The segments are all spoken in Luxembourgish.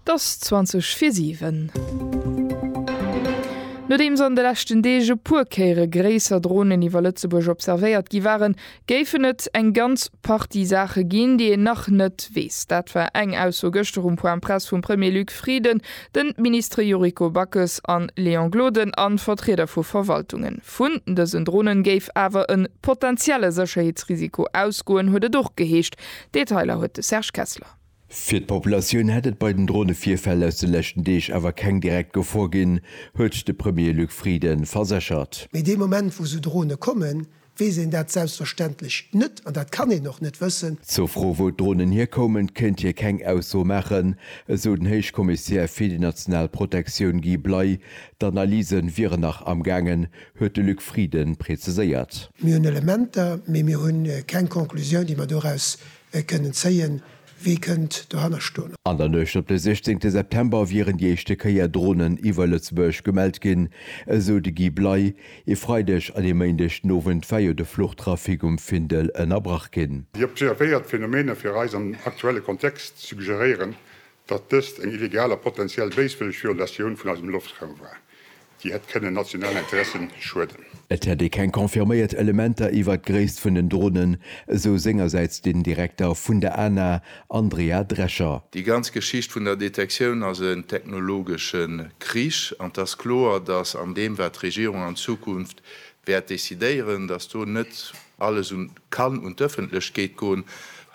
Et ass 20 fir 7. Nodeems an de leschten Deeg e puer Kéiere gréisser Dronen iwwer Lëtzebuerg observéiert gi waren, géifen et eng ganz Partie Saache ginn, déi een nach net weess. Dat war eng Ausso gëschter um Point Presse vum Premier Luc Frieden, de Ministere Yuriko Backes a Léon Gloden a Vertrieder vu Verwaltungen. Vun dësen Drone géif awer e potentielle Sécherheetsrisiko ausgoen, huet et och geheescht. Detailer huet de Serge Kessler. Fir d'Populatioun hätt et bei den Dronevirfäll aus de leschten Deeg awer keng direkt Gefor ginn, huet de Premier Luc Frieden verséchert. Mee dee Moment, wou esou Drone kommen, weess een dat selbstverständlech net an dat kann een och net wëssen. Zur Fro, wou d'Dronen hierkoumen, kéint hie keng Ausso maachen, esou den Héichkommissär fir déi national Protektioun Guy Bley. D'Analyse wieren nach amgaangen, huet de Luc Frieden präziséiert. Mir hunn Elementer, mee mir hu keng Conclusioun, déi mer doraus kënnen zéien. Wie kënnt dohanner stoen? An der Nuecht op de 16 September wieren déi éischte Kéier Dronen iwwer Lëtzebuerg gemellt ginn, esou de Guy Bley. E Freideg an e Méindeg den Owend war jo de Fluchtrafic um Findel ënnerbrach ginn. Déi observéiert Phänomene fir eis am aktuelle Kontext suggeréieren, datt dëst eng illegal a potenziell béiswëlleg Violatioun vun eisem Loftraum war. Déi hätt kënnen nationalen Interessen schueden. Et hätt ee keng confirméiert Elementer iwwert d'Gréisst vun den Dronen, esou sengersäits den Direkter vun der ANA, Andrea Drescher. Déi ganz Geschicht vun der Detektioun ass en technologesche Krich an et ass kloer, datt an deem wat d'Regierung an Zukunft wäert decidéieren, datt do net alles un kann un d'Ëffentlechkeet goen,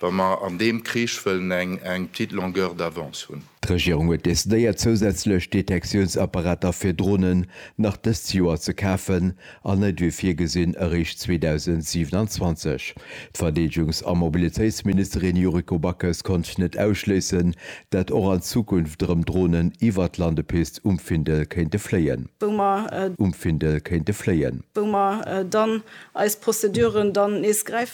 wa mer an deem Krich wëllen eng petite longueur d'avance hunn. D'Regierung huet decidéiert, zousätzlech Detektiounsapparater fir Dronen nach dëst Joer ze kafen an net wéi virgesinn eréischt 2027. D'Verdeedegungs a Mobilitéitsministerin Yuriko Backes konnt net ausschléissen, dat och an Zukunft erëm Dronen iwwer d'Landepist um Findel kéinte fléien. Wou mer dann eis Prozeduren dann nees gräifen.